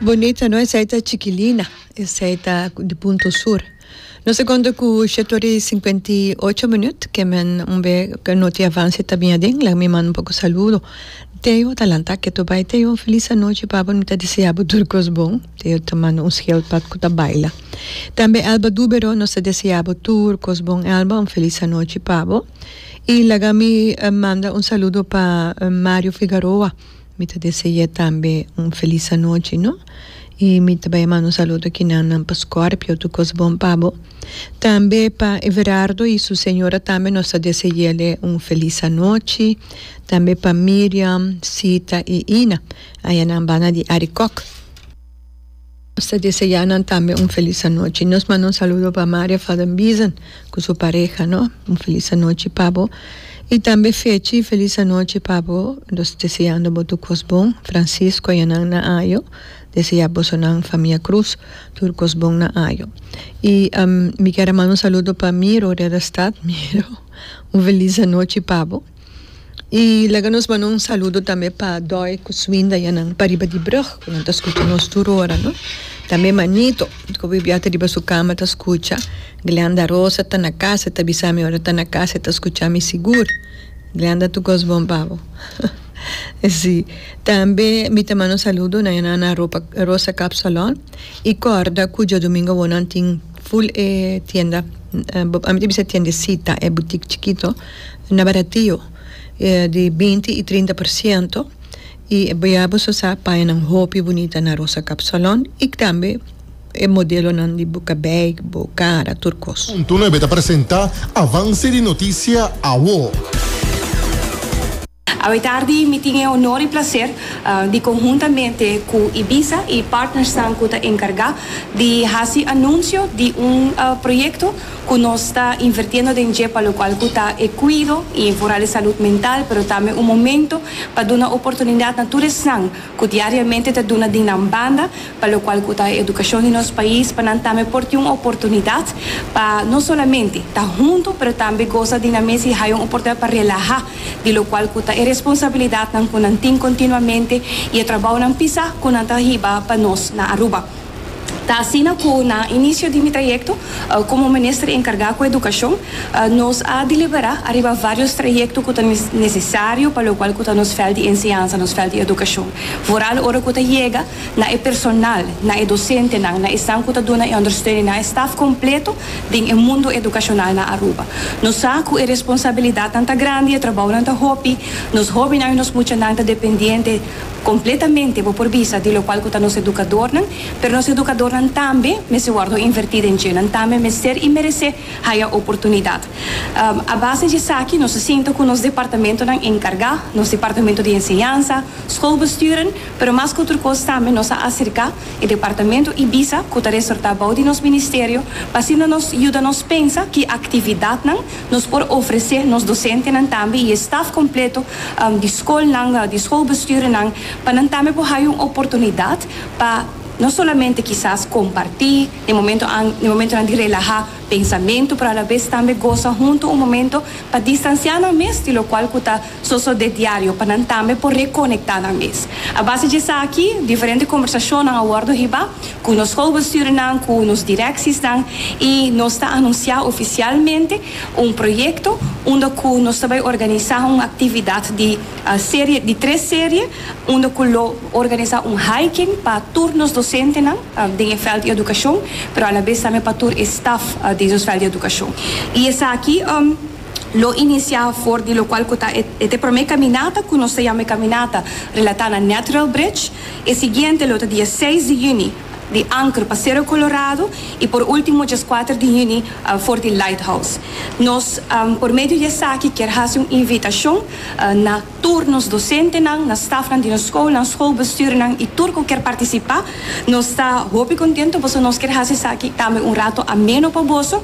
Bonita no esei ta chikilina esei ta di punto sur no secondo cu siete ora y cincuenta y ocho minuut ke men un be noti avance ta bin aden laga mi manda un poco saludo Theo ta lanta keto bai Theo un feliz anochi papá mi ta desea bo tur cos bon Theo ta manda un scheld pa cu ta baila tambe Elba Dubero nos ta desea bo tur cos bon Elba un feliz anochi pa bo y laga mi manda un saludo pa Mario Figaroa. Mi ta dese'é tambe un felis anochi no i mi ta bai manda un saludo ki nan nan pa Scorpio tur kos bon pa bo tambe pa Everardo i su señora tambe nos ta dese'ele un felis anochi tambe pa Miriam, Sita i Ina ayanan banda di Arikok. Nos ta deseá nan tambe un felis anochi. Nos manda un saludo pa Maria Vadenbiesen cu su pareha, no. Un felis anochi pa bo. Y tambe Fechi, felis anochi pa bo. Nos deseando bo tur cos bon. Francisco y nan na ayo. Deseá bosonan famia Cruz tur cos bon na ayo. Y mi ker a manda un saludo pa Miro Redestad. Miro, un felis anochi pa bo. y laga nos manda un saludo tambe pa Doy cu su winda ya nan pariba di brug cu nan ta scucha nos tur ora no tambe Manito cu awibiaha ta riba su cama ta scucha Glenda Rosa ta na casa e ta bisami ora e ta na casa e ta scucha mi sigur Glenda tu goz bon babo si tambe mi ta manda un saludo na e nan Rosa Cap Salon y corda cu diadomingo awo nan tin. Full e tienda ami ta bisa e tiendecita e boutique chikito na baratio di binti y trinta por ciento y ya bo so sa pañanan hopi bunita na Rosa Kapsalon y tambe e modelonan di buka bag bo cara tur cos. Punto Nuebe ta presenta Avance di Noticia Awo. Awe tardi mi tin e honor y placer di conhuntamente cu Ibiza y partnersnan cu ta encarga di haci anuncio di un proyecto cu nos ta invertiendo den dje pa locual cu ta e cuido y vooral e salud mental pero tambe un momento pa duna oportunidad na tur esnan cu diariamente ta duna di nan banda pa locual cu ta e educacion di nos pais pa nan tambe por tin un oportunidad pa no solamente ta hunto pero tambe goza di nan mes y hay un oportunidad pa relaha di locual cu ta e responsabilidadnan cu nan tin continuamente y e trabounan pisa cu nan ta hiba pa nos na Aruba. Ta asina cu na inicio di mi trayecto como Minister encarga cu Educacion, nos a delibera ariba varios trayecto cu ta necesario pa locual cu ta nos fel di enseñansa, nos fel di educacion. Vooral ora cu ta yega na e personal, na e docentenan, na esnan cu ta duna e ondersteuning, na e staf completo den e mundo edukashonal na Aruba. Nos sa ku e responsabilidatnan ta grandi, e trabounan ta hopi, nos hóbennan i nos muchanan ta dependiente kompletamente, bo por bisa, di lokual ku ta nos edukadornan, pero nos edukadornan tambe mester wòrdu invertí den dje, nan tambe mester i meresé haya oportunidat. A base di esaki nos a sinta ku nos departamentonan enkargá, nos departamento di enseñansa, skolbesturen, Pero mas ku tur kos tambe nos a aserká e departamento Ibiza ku ta resortá bou di nos ministerio pa asina nos yuda nos pensa ki aktividatnan nos por ofresé nos dosentenan tambe i e staf kompleto di skolnan di skolbestuurnan pa nan tambe por haya un oportunidat pa no solamente kisas kompartí den momento an den momentunan di relahá pensamentu pero alabes tambe gosa huntu un momento pa distansiá nan mes di lokual ku ta so so de diario pa nan tambe por rekonektá nan mes. A base di esaki, diferente kombersashonnan a wòrdu hiba ku nos schoolbestuurnan, ku nos direksisnan i nos ta anunsiá ofisialmente un proyekto unda ku nos ta bai organisá un aktividat di serie di tres serie unda ku lo organisá un hiking pa tur nos dosentenan den e vèlt di edukashon pero alabes tambe pa tur e staf di nos vèlt di edukashon i esaki. lo inicia for di locual cu ta e te prome caminata cu nos ta yama e caminata relata na Natural Bridge, e siguiente lo ta diaseis di juni di Anker pa Cerro Colorado y por ultimo diaskuater di juni for di Lighthouse. Nos por medio di esaki kier haci un invitacion na. Tur nos dosentenan, na stafnan di nos skolnan, skolbestuurnan i tur ku kier partisipá, nos ta hopi kontentu pasobra nos kier hasi esaki tambe un ratu ameno pa boso.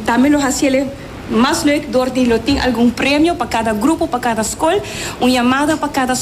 Tambe lo hasi el e mas leuk dor di lo tin algun premio pa kada grupo, pa kada skol, un yamada pa kada.